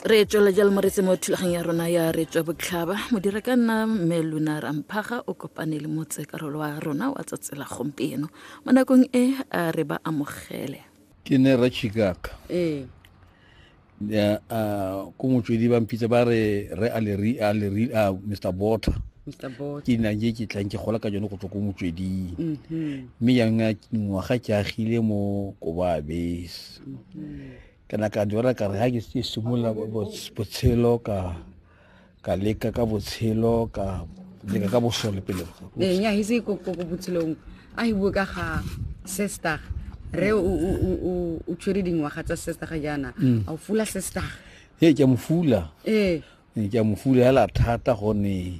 re tswela jalo mo retse mo thulaganyo ya rona ya re tswa botlhaba modira ka nna mme luna ramphaga o kopane le motsekarolo wa rona wa tsatsela gompieno mo nakong e a re ba amogele ke ne ra chikaka ee ko motswedi ba mpitsa ba re re aleri aleri a mr bota ke na je ke tlang ke gola ka jone go tswa ko motsweding mhm. mme yang ngwaga ke agile mo kobabe ke na ka jora ka re ha ke se simolola botshelo ka ka leka ka botshelo ka leka ka bosole pele ee, nya hise ko ko botshelong a hi bua ka ga sister re o o o o tshwere dingwaga tsa sister ga jana mm. a o fula sister ee ke mo fula ee ke mo fula hela thata gone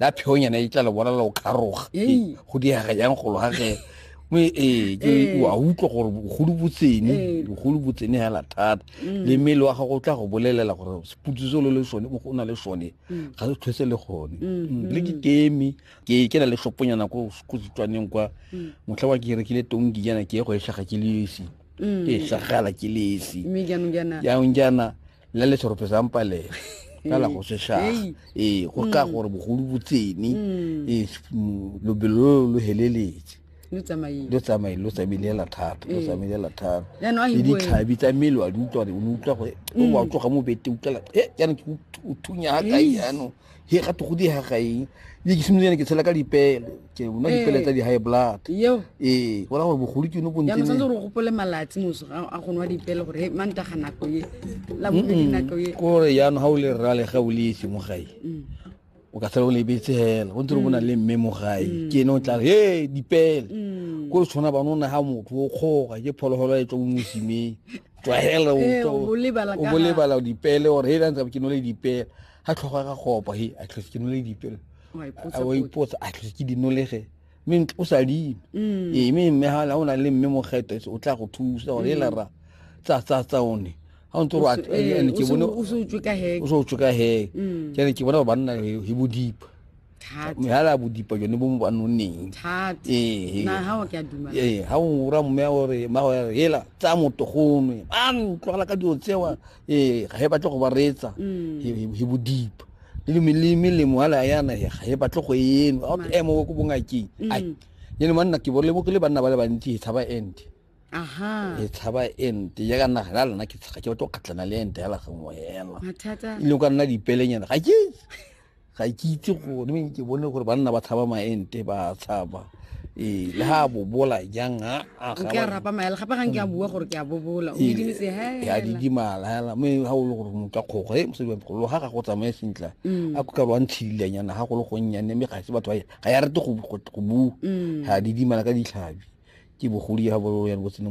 la pheonyana e tla le bona la o kgaroga Ee. go diega yang golo ga ge mme ee ke Ee. wa utlwa gore bogolo bo tsene Ee. bogolo bo tsene hela thata Mm. le mmele wa gago o tla go bolelela gore seputso se lo le sone mo go o na le sone Mm. ga se tlhwese le gone Mm, Mm, le ke mm. keme ke ke na le shoponyana ko ko setswaneng kwa Mm. motlha wa ke rekile tonki jana ke ye go e tlhaga ke le esi Mm. ke e tlhagala ke le esi mme jaanong jaana jaanong jaana la le serope sa mpalela ka la go seshaga ee go ka mm. gore bogolo bo tsene mm. ee mm, lobelo lo lo heleletse lo tsamaile lo tsamaile hela thata lo ee. tsamaile hela thata le ditlhabi tsa mmele wa di utlwa gore o ne utlwa gore o wa tloga mo bete utlwela e jaanong ke o thunya ga kae jaanong he ga to go di ha gae di ke simolene ke tshela ka dipele ke una dipele tsa di high blood yo eh wala gore bogolo ke no bo ntse ya motse re gopole malatsi moso a go nwa dipele gore ma nta ga nako ye la bo di nako ye gore ya no ha o le rra le ga o le se mo gae mm. o ka tsela o le betse hela o ntse re bona mm. le mme mo gae mm. ke no tla he dipele ko re tshwana banona ha motho o kgoga ke phologolo e tswa mo mosimeng tlwaela o bolebala dipele gore he la ntse ke no le dipele ga tlhogo ga go opa he a tlhose ke nole dipelo a wa ipotsa a tlhose ke dinolege mme o sa dime mm. ee mme mme ga o na le mme mogeto o tla go thusa gore e lara tsa tsa tsa one ga o ntse gore eh, eh, ke bone o se utswe ka heke o se utswe ka heke mm. ke ne ke bona gore banna he bodipa mehala bodipa jone bo mo ba nonneng ee ga o ura mme gore mmago ya re hela tsa motogonwe a ntlogela ka dilo tsewa ee ga e batle go ba reetsa he bo deep le melemo a le ayana ga e batle go eno a ke emo ko bongakeng ai yene manna ke borile bo ke le banna ba le bantsi e tshaba ente aha e tshaba ente ya ka nna ga lona ke tshaga ke batlo kgatlana le ente ya la gangwe hela mathata ile ka nna dipelenyana ga ke ga ke itse gore ke bone gore banna ba tlhaba maente ba tshaba ee le ga a bobola jang a rapa maela gape gang ke a bua gore ke a bobola o didimetse hela a didimala hela mme ga o le gore motho a kgogo e mosadi wa golo ga ga go tsamaye sentla mm. a kuka lwa ntshililanyana ga go le gonnyane mme ga se batho ga ya rete go bua mm. ga didimala ka ditlhabi ke bogodi ya bololo ya botsene